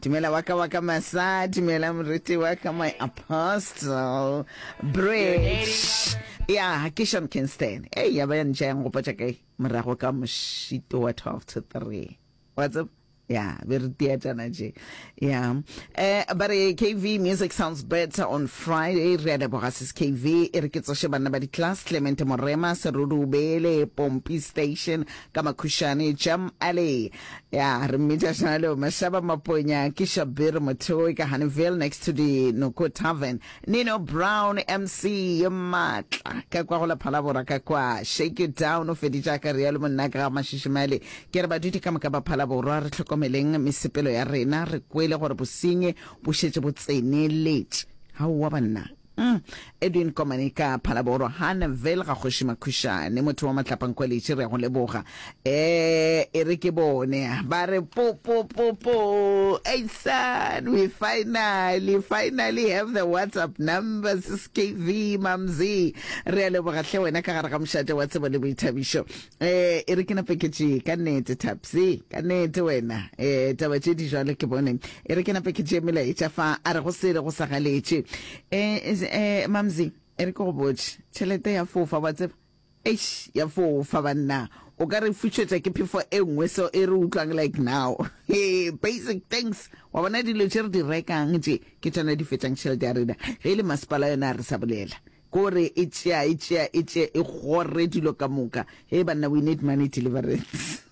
Dumela wa ka wa ka masa, dumela moriti wa ka my apostle. Bridge. Ya, ke Sean Kingston. Hey, ya ba ya ntša yang gopotša kae? Morago ka mošito wa 12 to 3. Wa tseba? ya be re teatana je ya eh ba re kv music sounds better on friday re a leboga sis kv e re ke tsoše banna ba di-class clement morema serurubele pompi station Ka makhušane, Jam Ali, ya re mmitša swana leo, Mashaba Maponya, ke Shabir Mothoe ka Honeyville next to the Noko Tavern. Nino Brown, MC ye matla ka kwa go la Phalabora ka kwa. Shake you down, o feditše a ka rialo monna ka ga Mashishimale. Ke re badudi ka moka ba Phalaborwa re hlokomeleng mesepelo ya rena, re kwele gore bosenyi bo šetše bo tseneletše. Aowa banna! Uhm, Edwin Komane ka Phalaborwa, Hanneville ga Kgoši Makhušane, motho wa Matlapankholetše, re a go leboga. Eh, e re ke bone, ba re po po po po, eisan, we finally, finally have the WhatsApp number, sis KV, mamzi. Re a leboga hle wena ka gare ga mošate wa tsebo le boithabišo. Eh, e re ke nape ke tšee ka nete tapse ka nete wena eh taba tše di jalo ke bone e re ke nape ke tšee melaetša fa a re go sele go sa galetše eh is- eh mamzi e re ke go botše tšhelete ya fofa wa tseba eish ya fofa banna o ka re fušetša ke phefo e nngwe so e re utlwang like now hey, basic things wa bona dilo tše re di rekang tše ke tšona di fetšang tšhelete ya rena ge e le masepala yona a re sa bolela Ko re e tšea e tšea e tše e gore dilo ka moka. Hee banna we need money deliverance.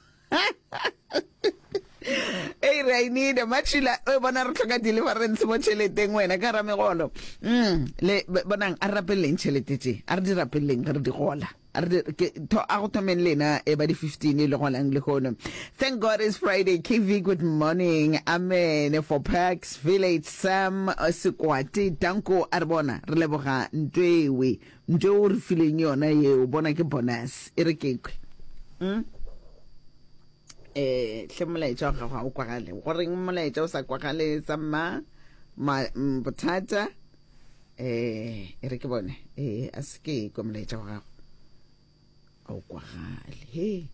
Hey re I need matšhila o bona re tlhoka deliverance mo tšheleteng wena ka ramegolo. Mm le bonang a rapelleng tšhelete tše. A re di rapelleng re di gola. A re di- ke tho- a go thomeng lena e ba di 15 e le gonang lehono thank god it's friday kv good morning amen for parks village sam uh, sekwate danko a re bona re leboga ntwewe ntwe o re fileng yona yeo bona ke bonus e re kekwe mm? eh hle molaetša wa gago ga o kwagale goreng molaetša o sa kwagale tsamma ma- mm, bothata eh e re ke bone eh a se ke kwa molaetša wa gago a o kwagale he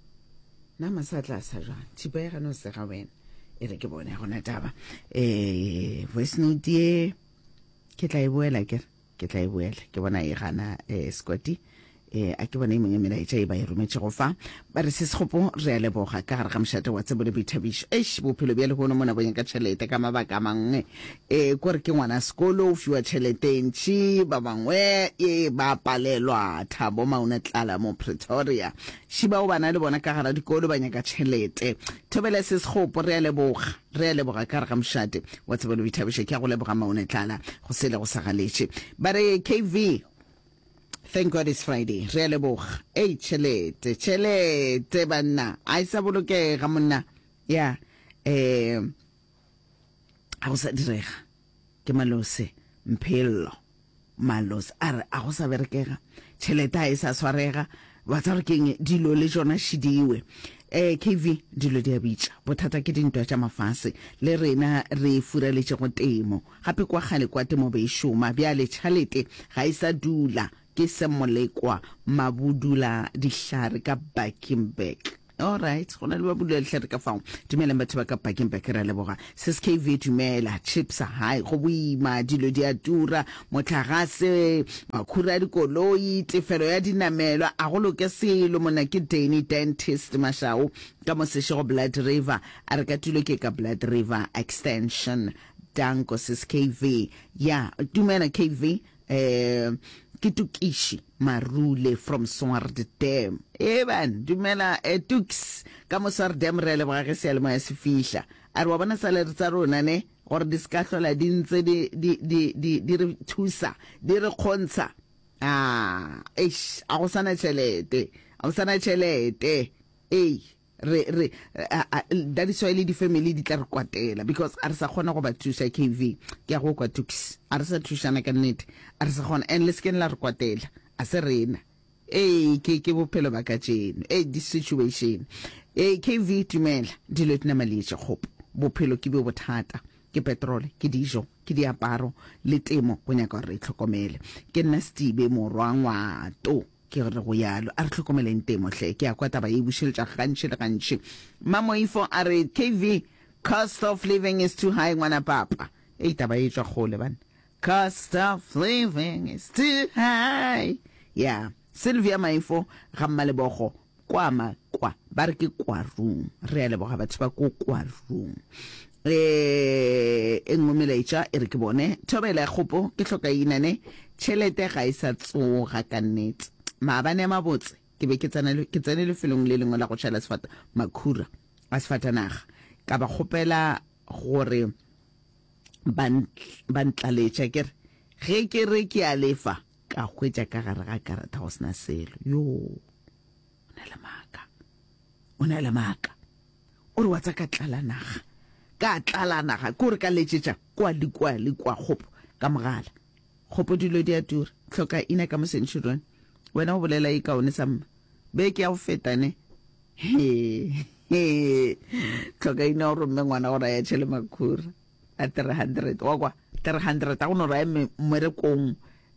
na masatla a sa jwang thipa ya gane o sega wena e re ke bone gona taba eh voice note ye ke tla e boela ke ke tla e boela ke bona e gana eh squati e a ke bona e mong ya melaetša e ba e rometšego fa ba re sesekgopo re a leboga ka gare ga mošate wa tsebo le boithabišo eish bophelo bja lehono mo nakong ya ka tšhelete ka mabaka a mangwe e ko re ke ngwana sekolo o fiwa tšhelete e ntšhi ba bangwe e ba palelwa thabo mauna tlala mo pretoria šiba o bana le bona ka gara dikolo ba nyaka tšhelete thobela sesekgopo re a leboga re a leboga ka re ga mošate wa tsebelo boithabišo ke ya go leboga maone tlala go sele go sa galetše ba re kv Thank God it's Friday. Re a leboga. Ei, tšhelete, tšhelete banna. A e sa bolokega monna. Ya, eh, a go sa direga. Ke malose, mphello, malose. A re, a go sa berekega. Tšhelete a e sa swarega. Ba tsa gore keng dilo le jona šidiwe. Eh, KV, dilo di a bitša. Bothata ke dintwa tša mafase. Le rena re furaletše go temo. Gape kwa kgale kwa temo be e šoma, bjale tšhalete ga e sa dula. Ke Semmolekwa Mabudula Dihlare ka Bakenberg. Alright, go na le Mabudula Dihlare ka fao. Dumelang batho ba ka Bakenberg, ra leboga. Seskv dumela, chips hai go boima, dilo di a tura, motlagase, makhura a dikoloi, tefelo ya dinamelwa, a go loke selo. Monna ke Danny Dentist Mashau ka mo Seshego Blood River, a re ka tulo ke ka Blood River Extension. Danko sis KV. Ya, dumela KV. Um, ke Tukiši Marule from Swardam. Eban, dumela eh, Tuks, ka mo Swardam re a leboga ge sealemoya se fihla. A re wa bona salary tsa rona ne gore di se ka hlola di ntse di, di, di, di, di re thusa di re kgontsha a ah, eish a go sana tšhelete a go sana tšhelete ei re re that is why le di-family di tla re kwatela because a re sa kgona go ba thuša kv ke ya go kwa tukis a re sa thušana ka nnete a re sa kgona and le sekeng la re kwatela a se rena ee ke ke bophelo ba ka tšeno ee di-situation ee kv tumela dilo di namalietše kgopo bophelo ke bo bothata ke petrole ke dijo ke diaparo le temo go nyaka gore re itlhokomele ke nna setibe morwa ngwato Ke re go yalo, a re hlokomeleng temo hle, ke a kwa taba ye e bušeletša gantši le gantši. Mmamoifo a re, KV, cost of living is too high, ngwana papa. Ei, taba ye e tšwa kgole banna. Cost of living is too high. Ya, Sylvia Maifo ga Mmalebogo. Kwa ma kwa ba re ke kwa room re a leboga batho ba ko kwa room eh e nngwe melaetša e re ke bone thobela ya kgopo ke hloka inane tšhelete ga e sa tsoga ka nnete maabane a mabotse ke be ke tsene lefelong le lengwe la go šala sefata makhura a sefatanaga ka ba kgopela gore ba ntlaletša ke re ge ke re ke a lefa Ka hwetša ka gare ga karata go sena selo. Yoo, o na le maaka. O na le maaka. O re wa tsa ka tlala naga. Ka tlala naga. Ke gore ka letšetša kwa le kwa le kwa kgopo ka mogala. Kgopo dilo di a tura. Tlhoka ina ka mo sentšhirone. Wena o bolela e kaone sa mma. Beke ya go feta ne. He, he. Tlhoka ina o romme ngwana go raya tšhele makhura. a 300 wa kwa 300 a go no raya mmerekong um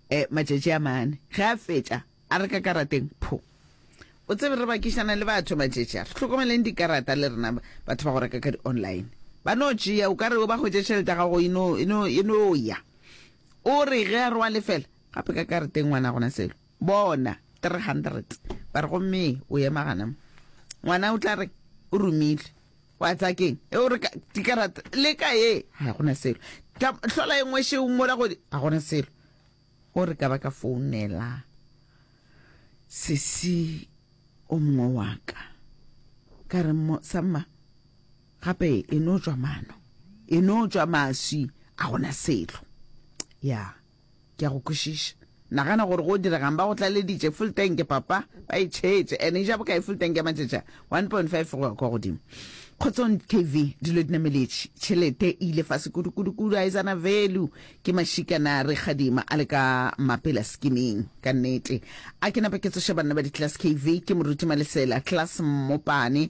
eh, matšatši a mane ge a fetša a re ka karateng pho o tsebe re bakišana le batho matšatši a re hlokomeleng dikarata le rena batho ba go reka ka di-online ba no tšea o ka re o ba hwetše tšhelete ya gago e no e e ya o re ge a re wa lefela gape ka karateng ngwana gona selo bona 300 ba re gomme o ema gana ngwana o tla re o romile wa tsa keng e o re dikarata le ka ye ga gona selo hlola e nngwe šeo mola godi ga gona selo o re ka ba ka founela sesi o mongwe wa ka ka re samma gape e no tswa mano e no tswa maswi a gona selo ya yeah. Ke a go kwešiša. Nagana gore go diregang. Ba go tlaleditše full tank, papa. Ba e tšhetše. And e ja bokae full tank ya matšatši a? One point five go ya kwa godimo. Kgotsong TV, dilo di nameletše. Tšhelete e ile fase kudu, kudu, kudu. Aetsana value ke mašika na re kgadima a le ka mapela skimming. Ka nnete. A ke napa ke tsoše banna ba di-class KV, ke moruti Malesela, class Mmopane,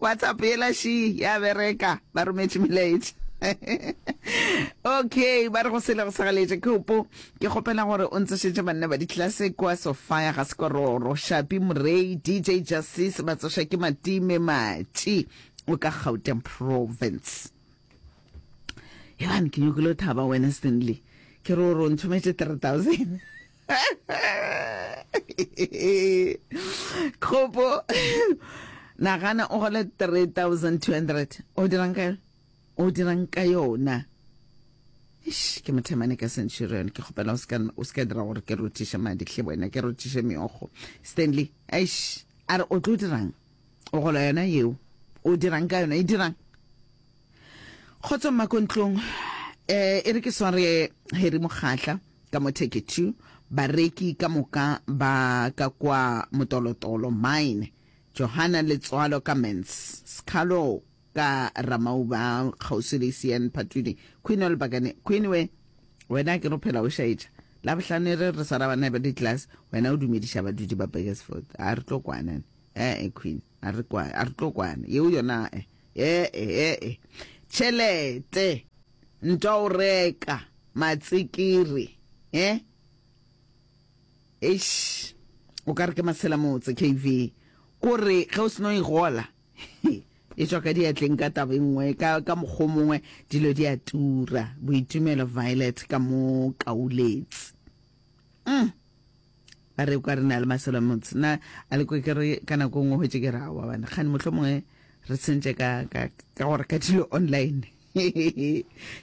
WhatsApp yela shi ya bereka ba rometše melaetša okay ba re go sele go segaletše ke opo ke kgopela gore o ntsošetše banna ba ditlase kwa sofia ga sekororo shapi morei dj justice ba tsoša ke matime matši o ka gauteng province ebane ke nyokile o thaba wena stanley ke re o re o ntšhometše 3000 kgopo nagana o gole 3200 o dirang ka o dirang ka yona Eish, ke mothemane ka centurion ke kgopela o se ka dira gore ke rothiše madi hle wena ke rothiše meogo stanley aish a re o tlo dirang o gola yona yeo o dirang ka yona e dirang kgotso mmakontlong um e re ke sware heri mokgatla Ka mo Take Two, bareki ka moka ba ka kwa motolotolo, mine, Johanna Letswalo ka Mens, Skhalo ka Ramauba, kgauswi le Isian Phatudi, Queen Olbakane, Queen we, wena akere o phela o šaetša. Labohlano e re re swara banna ba di-class, wena o dumediša badudi ba Burgersfort. A re tlo kwana ne? E-e, Queen, a re kwa, a re tlo kwana. Yeo yona a-e. Ee-e-e-e. Tšhelete. Ntwa o reka. Matsikiri. E? Eish. O ka re ke masela motse, KV. Kore, ge o seno e gola. E tšwa ka diatleng ka taba e nngwe, ka, ka mokgwa mongwe, dilo di a tura. Boitumelo Violet ka mo kauletse. mm. ba re kwa re na le maselo motse na a le kwe ke re ka nako nngwe hwetse ke ra wa bana gane motlho mongwe re tsentse ka ka ka gore ka dilo online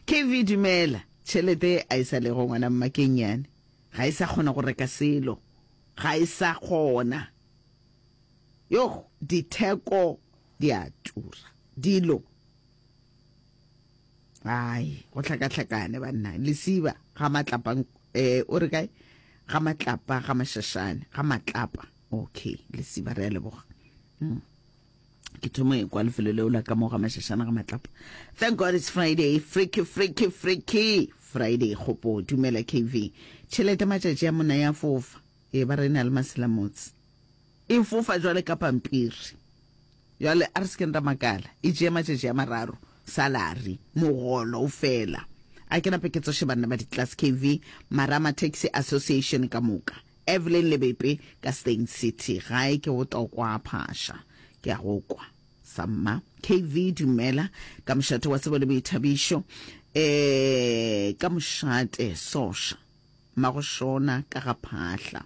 kv dumela tšhelete a e sa lego ngwana mmakeng yane ga e sa kgona go reka selo ga e sa kgona yo ditheko di a tura dilo ai go hlakahlakane banna lesiba ga matlapa um eh, o re kae ga matlapa ga mashashane ga matlapa okay lesiba re a leboga mm. ke thomo e kwa lefelo leo la ka mo ga mashashane ga matlapa thank god it's friday freaky freaky freaky friday kgopo dumela kv tšhelete matšatši a mona ya fofa e ba re na le maselamotse E fofa jwale ka pampiri. Jwale a re se keng ra makala, e tšee matšatši a mararo, salary, mogolo o fela. A ke nape ke tsoše banna ba di-Class KV, Marama Taxi Association ka moka, Evelyn le Bepe ka Steyn City. Gae ke botokwa phasha, ke a go kwa. Samma, KV, Dumela. Ka mošate wa tsebo le boithabišo. E, ka mošate, soša. Mmago Shona ka ga phahla.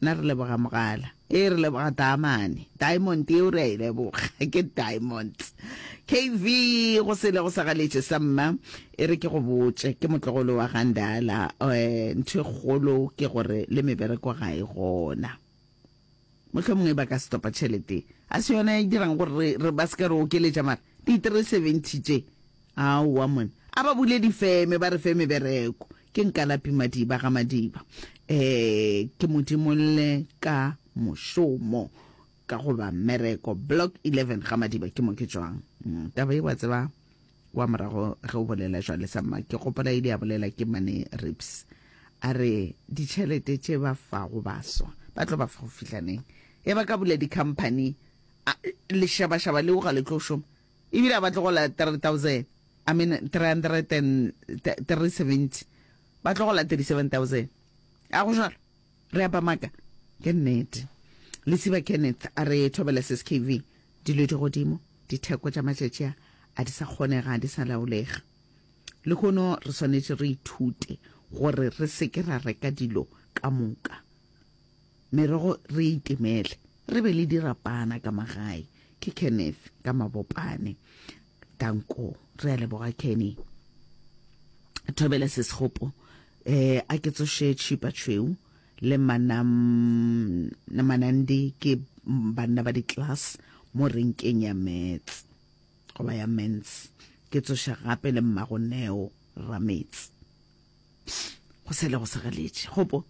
Nna re leboga mogala. Ee re leboga taamane. Diamond yeo re a e leboga. Ke diamonds. KV go sele go sa galetše sa mma. E re ke go botše. Ke motlogolo wa ga Ndala. Eh, ntho e kgolo ke gore le mebereko ga e gona. Mohlomongwe e ba ka se topa tšhelete. Ga se yona e dirang gore re, re ba se ka re okeletša mara. Di 370 tše aowa monna. A ba bule difeme ba re fe mebereko. Ke nkalapi madiba ga madiba. Ee ke mo dimolle ka mošomo ka goba mmereko. Block 11 ga madiba ke mo ke tšwang. Taba ye wa tseba kwa morago ge o bolela jwale sa mma ke gopola ile ya bolela ke mane Rips a re ditšhelete tše ba fago baswa ba tlo ba fa go fihla neng ge ba ka bula di company A, lešabašaba leo ga le tlo šoma. E bile a ba tlogola 3,000, I mean 370. Ba tlogola 37,000. A go jalo? Re a ba maka. Ke nnete. Lesiba Kenneth a re thobela se skv. Dilo di godimo. Ditheko tša matšatši a, a di sa kgonega, a di sa laolega. Lehono re swanetše re ithute gore re se ke ra reka dilo ka moka. Merogo re e itemele, re be le dirapana ka magae. Ke Kenneth ka Mabopane ka nko. Re a leboga Kenny. Thobela se segopo eh a ke tsoše tšhipa tšhweu le manam na manandi ke banna ba di-class mo renkeng ya mets goba ya mens ke tsoša gape le mmago neo rametsi go sele go segaletše gopo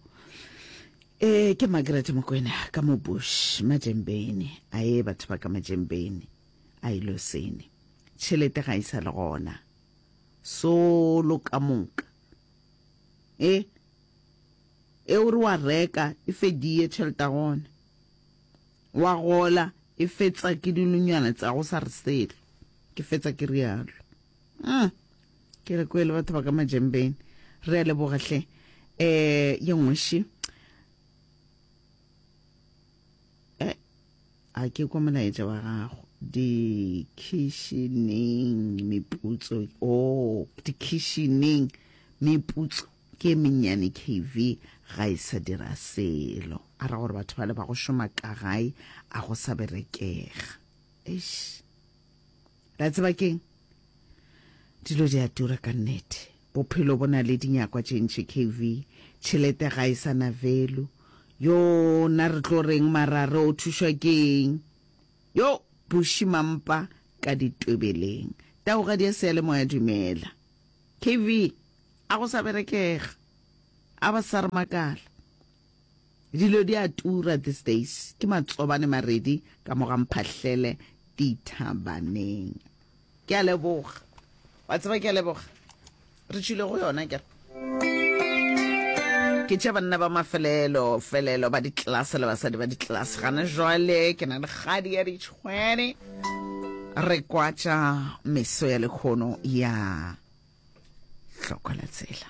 e ke makerete mokwena ka mo bush majembeni a ye batho ba ka majembeni a ilo sene tšhelete ga e sa le gona solo ka moka e e o re wa reka e fedie tšhelete ya gona wa gola e fetsa ke dilunyana tsa go sa re selo ke fetsa ke rialo ah ke re kwele batho ba ka majembeng re a leboga hle eh ye ngweši eh a ke kwa molaetša wa gago dikhišineng meputso o oh, dikhišineng meputso ke mennyane kv ga e sa dira selo a ra gore batho ba le ba go šoma ka gae a go sa berekega eish la tseba keng dilo di a tura ka nnete bophelo bo na le dinyakwa tše ntši kv tšhelete ga e sa na velu yo na re tlo reng marare o thušwa keng yo bušimampa ka ditwebeleng taoga di a seya le moya dumela kv a go sa berekega a ba sa re makala Dilo di a tura these days, ke matsobane maredi ka mo ga mphahlele dithabaneng. Ke a leboga. Wa tseba ke a leboga. Re tšhile go yona kere. ke tša banna ba mafelelo felelo ba ditlase le basadi ba ditlase gana jwale ke na le kgadi ya ditšhwene re kwatša meso ya lekgono ya hlokola tsela